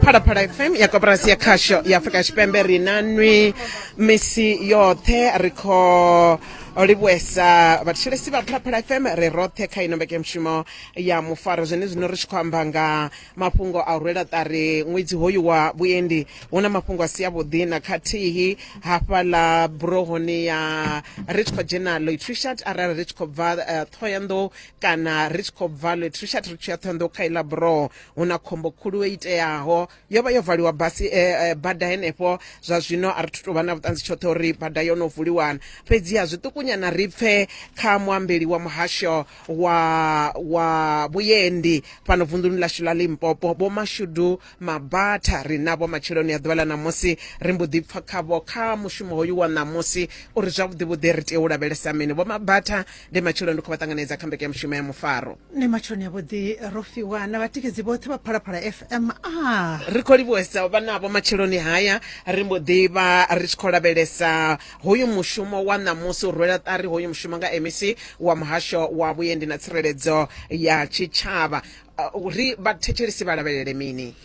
phalaphala fm ya koporasi ya khasho ya afrika tshipembe ri na nwi misi yoṱhe ri khou livhuesa vhathetshelesi vha phalaphala fm ri roṱhe kha ino mbekanyamushumo ya mufaro zwene zwino ri tshi khou amba nga mafhungo a u rwela ṱari ṅwedzi hoyu wa vhuendi hu na mafhungo a si avhuḓi na khathihi hafhaḽa burohoni ya ri tshi khou dzhena loitrishat arali ri tshi khou bva eh, ṱhohoyanḓou kana ri tshi khou bva lwe trishat ri tshiya thondo kha ila bro hu na khombo khulu e iteaho yo vha yo valiwa basi eh, eh, bada henefho zwa zwino a ri thu tou vha na vhuṱanzi tshoṱhe uri bada yo no vuliwana fhedziha zwiṱukunyana ri pfe kha muambeli wa muhasho wa wa vhuyendi fhano vunḓuni ḽashu ḽa limpopo vho mashudu Mabatha ri navho matsheloni a ḓuvha ḽa ṋamusi, ri mbo ḓi pfa khavho kha mushumo hoyu wa ṋamusi uri zwavhuḓi-vhuḓi ri tea u lavhelesa mini. Vho Mabatha ndi matsheloni ndi khou vha ṱanganedza kha mbekanyamushumo ya Mufaro. Ndi matsheloni avhuḓi ro fhiwa na vhatikedzi vhoṱhe vha Phalaphala FM. Ah! Ri khou livhuwesa u vha navho matsheloni haya, ri mbo ḓi vha ri tshi khou lavhelesa hoyu mushumo wa ṋamusi, u rwela ṱari hoyu mushumo nga MEC wa Muhasho wa Vhuendi na Tsireledzo ya Tshitshavha. uh, uri vhathetshelesi vha lavhelele mini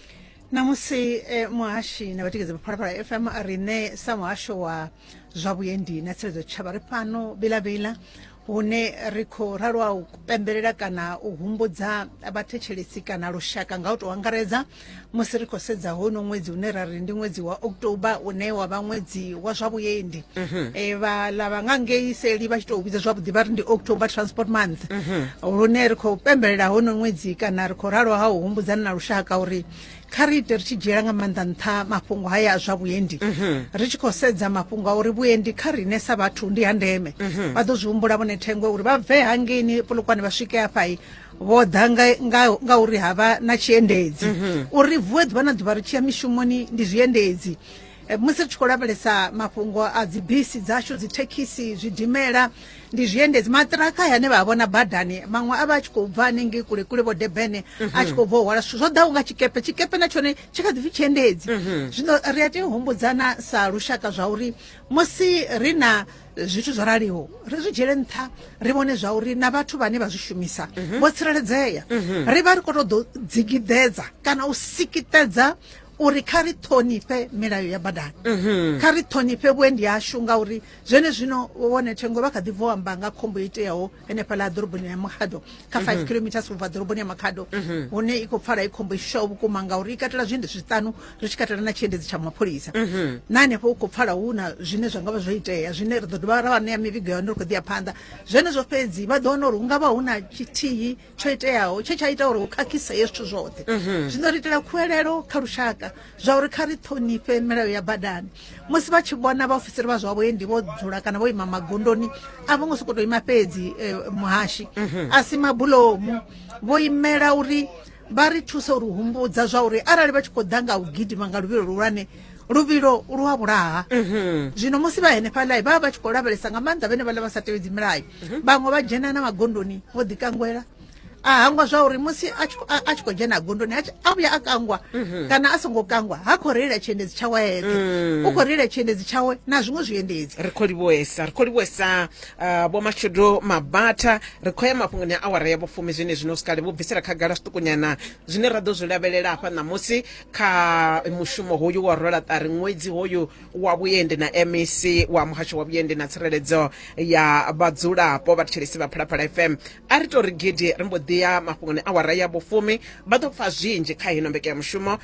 namusi eh, muhashi na vhatikedzi vha phalaphala fm riṋe sa muhasho wa zwa vhuendi na tsireledzo tshitshavha ri fhano bilavila hune ri khou ralwa u pembelela kana u humbudza vhathetshelesi kana lushaka nga u tou angaredza musi ri khou sedza hono ṅwedzi une ra ri ndi ṅwedzi wa october une wa vha ṅwedzi wa zwa vhuendi mhm. e, vha lava nga ngei seli vha tshi tou vhidza zwavhuḓi vha ri ndi october transport month mhm. lune ri khou pembelela hono ṅwedzi kana ri khou ralo ha u humbudzana na lushaka uri kha ri ite ri tshi dzhiela nga maanḓa nṱha mafhungo haya a zwa vhuendi mhm. ri tshi khou sedza mafhungo a uri vhuendi kha riṋe sa vhathu ndi ha ndeme vha ḓo zwi humbula vhone thengwe uri vha bve hangeini polokwane vha swike afhai vho ḓa nga uri ha vha na tshiendedzi mhm. uri vuwe ḓuvha na ḓuvha ri tshiya mishumoni ndi zwiendedzi eh, musi ri tshi khou lavhelesa mafhungo a dzibisi dzashu dzithekhisi zwidimela ndi zwiendedzi maṱiraka hane vha vhona badani maṅwe a vha a tshi khou bva hanengei kule kule vho debene a tshi mhm. khou bva u hwala zwithu zwo ḓaho nga tshikepe tshikepe na tshone tshi kha ḓipfi tshiendedzi mhm. zwino ri a tea u humbudzana sa lushaka zwa uri musi ri na zwithu zwo raliho ri zwi dzhiele nṱha ri vhone zwa uri na vhathu vhane vha zwi shumisa mhm. vho tsireledzea mhm. ri vha ri khou tou ḓo dzigidedza kana u sikitedza uri kha ri ṱhonifhe milayo ya badani mhm. kha ri ṱhonifhe vhuendi yashu ngauri zwene zwino vhone thengo vha kha ḓi bvo amba nga khombo iteaho ene fhala ḓoroboni ya makhado kha five mhm. kilometers ubva ḓoroboni ya makhado mhm. hune i khou pfala i khombo i shushaho vhukuma ngauri i katela zwiendedzi zwiṱanu ri tshi katela na tshiendedzi tsha mapholisa mhm. na hanefho u khou pfala hu na zwine zwa nga vha zwo itea zwine ri ḓo dovha ra vha ṋea mivhigo ya hone ri khou ḓi ya phanḓa zwenezwo fhedzi vha ḓo wana uri hu nga vha hu na tshithihi tsho iteaho tshe tsha ita uri hu khakhise hezwi zwithu zwoṱhe zwino ri itela khuwelelo kha lushaka zwa uri kha ri ṱhonifhe milayo ya badani musi vha tshi vhona vhaofisiri vha zwa vhuendi vho dzula kana vho ima magondoni a vho ngo sokou tou ima fhedzi eh, muhashi mhm. a si mabulomu vho imela uri vha ri thusa uri humbudza zwa uri arali vha tshi khou ḓa nga u gidima nga luvhilo luhulwane luvhilo lu a vhulaha mhm. zwino musi vha henefhaḽa vha vha vha tshi khou lavhelesa nga maanḓa vhene vhaḽa vha sa tevhedzi milayo mhm. vhaṅwe vha dzhena na magondoni vho ḓikangwela a hangwa zwa uri musi a tshi khou dzhena gondoni a a vhuya a kangwa mhm. kana a songo kangwa ha khou reila tshiendedzi tshawe eṱhe mm. u khou reila tshiendedzi tshawe na zwiṅwe zwiendedzi ri khou livhuesa ri khou livhuesa uh, vho mashudu mabata ri khou ya mafhungoni a awara ya vhufumi zwine zwino sikale vho bvisela khagala zwiṱukunyana zwine ra ḓo zwi lavhelela hafha ṋamusi kha mushumo hoyu wa rola ṱari ṅwedzi hoyu wa vhuendi na mec wa muhasho wa vhuendi na tsireledzo ya vhadzulapo vhathetshelesi vha phalaphala fm A ri tou ri gidi ri mbo ḓi ya mafhungoni awara ya vhufumi. Vha ḓo pfa zwinzhi kha hino mbekanyamushumo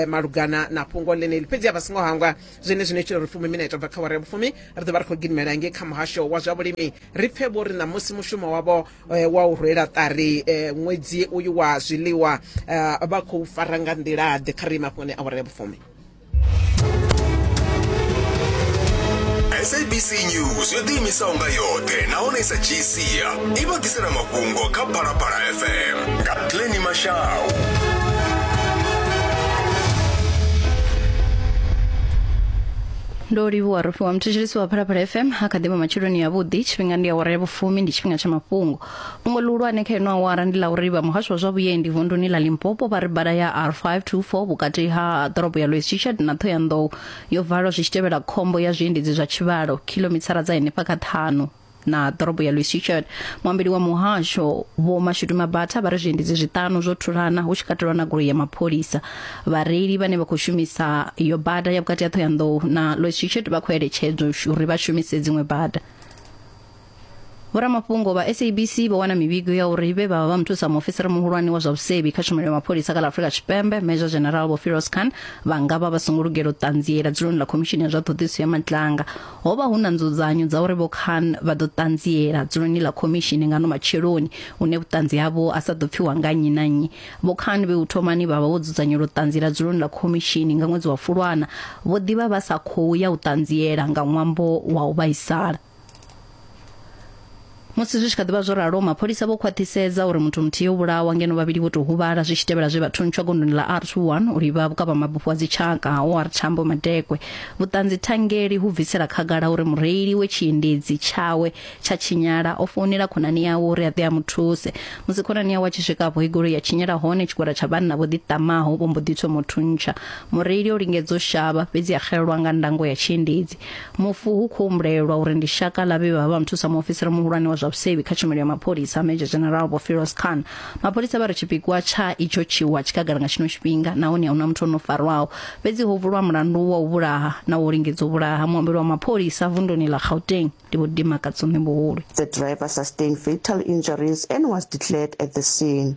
malugana na fhungo ḽeneḽi. Fhedzi a vha songo hangwa zwenezwi no itela uri fumi minete bva kha awara ya vhufumi ri ḓo vha ri khou gidimela ngei kha muhasho wa zwa vhulimi ri pfe vho ri ṋamusi mushumo wavho eh, wa u rwela ṱari eh, ṅwedzi uyu wa zwiḽiwa eh, vha khou fara nga nḓila-ḓe. Kha ri ye mafhungoni awara ya vhufumi. sabc news yo ḓiimisaho nga yoṱhe nahone i sa dzhii sia i vha ḓisela mafhungo kha phalaphala fm nga pleni mashau ndo livhuwa rofhiwa muthetsheliso wa phalaphala fm a kha ḓivha matsheloni yavhuḓi tshifhinga ndi awara ya vhufumi ndi tshifhinga tsha mafhungo fhungo ḽihulwane kha ino awara ndi ḽa uri vha muhasho wa zwa vhuendi vunduni ḽa limpopo vha ri bada ya r524 vhukati ha ḓorobo ya louis chichard na thohoyandou yo valwa zwi tshi tevhela khombo ya zwiendedzi zwa tshivhalo khilomithara dza henefha kha ṱhanu na ḓorobo ya louis chichard muambeli wa muhasho vho mashudu mabatha vha ri zwiendedzi zwiṱanu zwo thulana hu tshi katelwa na goloi ya mapholisa vhareili vhane vha khou shumisa yo bada ya vhukati ha thohoyandou na louis chichard vha khou eletshedzwa uri vha shumise dziṅwe bada Vhoramafhungo vha SABC vho wana mivhigo ya uri vhe vha vha vha muthusa muofisiri muhulwane wa zwa vhusevhi kha tshumelo ya mapholisa kha ḽa Afrika Tshipembe Major General Vho Firoz Khan vha nga vha vha songo lugela u ṱanziela dzuloni ḽa khomishini ya zwa ṱhoḓisiso ya matlanga ho vha hu na nzudzanyo dza uri Vho Khan vha ḓo ṱanziela dzuloni ḽa khomishini nga no matsheloni une vhuṱanzi havho a sa ḓo pfiwa nga nnyi na nnyi Vho Khan vhe u thomani vha vha vho dzudzanyela u ṱanziela dzuloni ḽa khomishini nga ṅwedzi wa Fulwana vho ḓivha vha sa khou ya u ṱanziela nga ṅwambo wa u vhaisala musi zwi tshi kha ḓivha zwo ralo mapholisa vho khwaṱhisedza uri muthu muthihi o vhulawa ngeno vhavhili vho tou huvhala zwi tshi tevhela zwe vha thuntsha gondoni ḽa r21 u livha vhukavhamabufho wa dzitshaka ha or tambo madekwe vhuṱanzi thangeli hu bvisela khagala uri mureili we tshiendedzi tshawe tsha tshinyala o founela khonani yawe uri a ḓe a mu thuse musi khonani yawe a tshi swika afho igolo ya tshinyala hone tshigwada tsha vhanna vho ḓiṱamaho vho mbo ḓi thoma u thuntsha mureili o lingedza u shavha fhedzi a xelelwa nga ndango ya tshiendedzi mufu hu khou humbulelwa uri ndi shaka ḽa vhe vha vha nthusa muofisiri muhulwane wa zwa vhusevhi kha tshumelo ya mapholisa major general vho firos khan mapholisa vha ri tshipikwa tsha itsho tshiwa tshikagala nga tshino tshifhinga nahone a huna muthu o no farwaho fhedzi ho vulwa mulandu wa u vhulaha na wo lingedza u vhulaha muambeli wa mapholisa vunduni ḽa gauteng ndi vho dimakatso ṋembuhulu The driver sustained fatal injuries and was declared at the scene.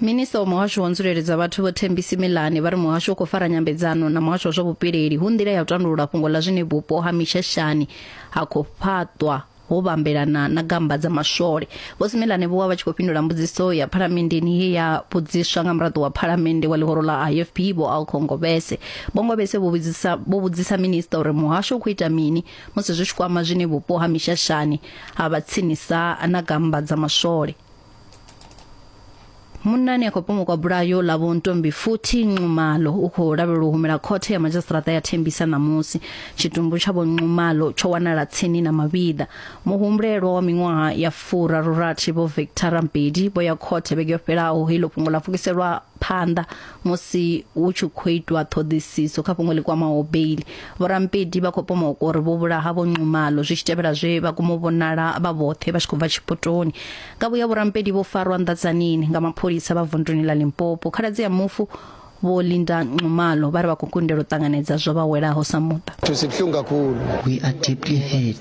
minista wa muhasho wa nzulele dza vhathu vho thembisi milane vha ri muhasho u khou fara nyambedzano na muhasho wa zwa vhupileli hu nḓila ya u tandulula fhungo ḽa zwine vhupo ha mishashani ha khou fhaṱwa ho vhambelana na gamba dza maswole vho similane vho vha vha tshi khou fhindula mbudziso ya phalamenndeni ye ya vhudziswa nga muraḓo wa phalamennde wa ḽihoro ḽa ifp vho alkhongobese bongobese vho vhudzisa vho vhudzisa minista uri muhasho u khou ita mini musi zwi tshi kwama zwine vhupo ha mishashani ha vha tsinisa na gamba dza maswole munnani a khou pomokwa bulayo ḽa vho ntombi futhi nxumalo u khou lavhelelwa u humela khothe ya madzhisiṱiraṱa ya thembisa ṋamusi tshitumbu tsha vho nxumalo tsho wanala tsini na mavhiḓa muhumbulelwa wa miṅwaha ya furarurathi vho victor rampedi vho ya khothe vhege yo fhelaho heilo fhungo ḽa pfukiselwa phanḓa musi hu tshi khou itwa ṱhoḓisiso kha fhungo ḽi kwamaho beili vhorampedi vha khou pomoka uri vho vhulaha vho nxumalo zwi tshi tevhela zwe vha komo vhonala vha vhoṱhe vha tshi khou bva tshipotoni nga vhuya vhorampedi vho farwa nḓadzanini nga mapholisa vha vunduni ḽa limpopo khaladzi ya mufu vho linda nxumalo vha ri vha khou kundela u ṱanganedza zwo vha welaho sa muṱa sibuhlungu kakhulu We are deeply hurt.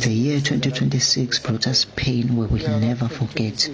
The year 2026 brought us pain we will never forget.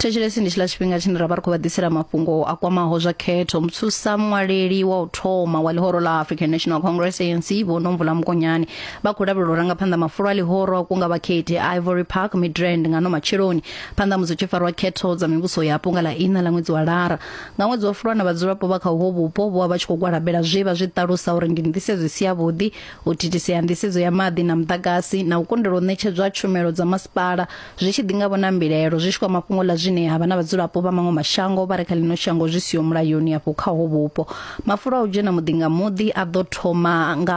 thetshelesi ndi tshiḽa tshifhinga tshine ra vha ri khou vha ḓisela mafhungo a kwamaho zwa khetho muthusa muṅwaleli wa u thoma wa ḽihoro ḽa african national congress anc vho nomvula mukonyane vha khou lavhelela u ranga phanḓa mafulo a ḽihoro a kunga vhakhethi a ivory park midrand nga no matsheloni phanḓa musi tshi farwa khetho dza mivhuso yapo nga ḽa ina ḽa ṅwedzi wa lara nga ṅwedzi wa fulwana vhadzulapo vha kha uho vhupo vho vha tshi khou gwalabela zwe vha zwi ṱalusa uri ndi nḓisedzo isi yavhuḓi u thithisea nḓisedzo ya maḓi na muḓagasi na u kundelwa u ṋetshedzwa tshumelo dza masipala zwi tshi ḓi nga vhona mbilaelo zwi tshi kwa mafhungo ḽa zwine ha vha na vhadzulapo vha maṅwe mashango vha re kha ḽino shango zwi siho mulayoni afho kha ho vhupo mafulo a u dzhena muḓi nga muḓi a ḓo thoma nga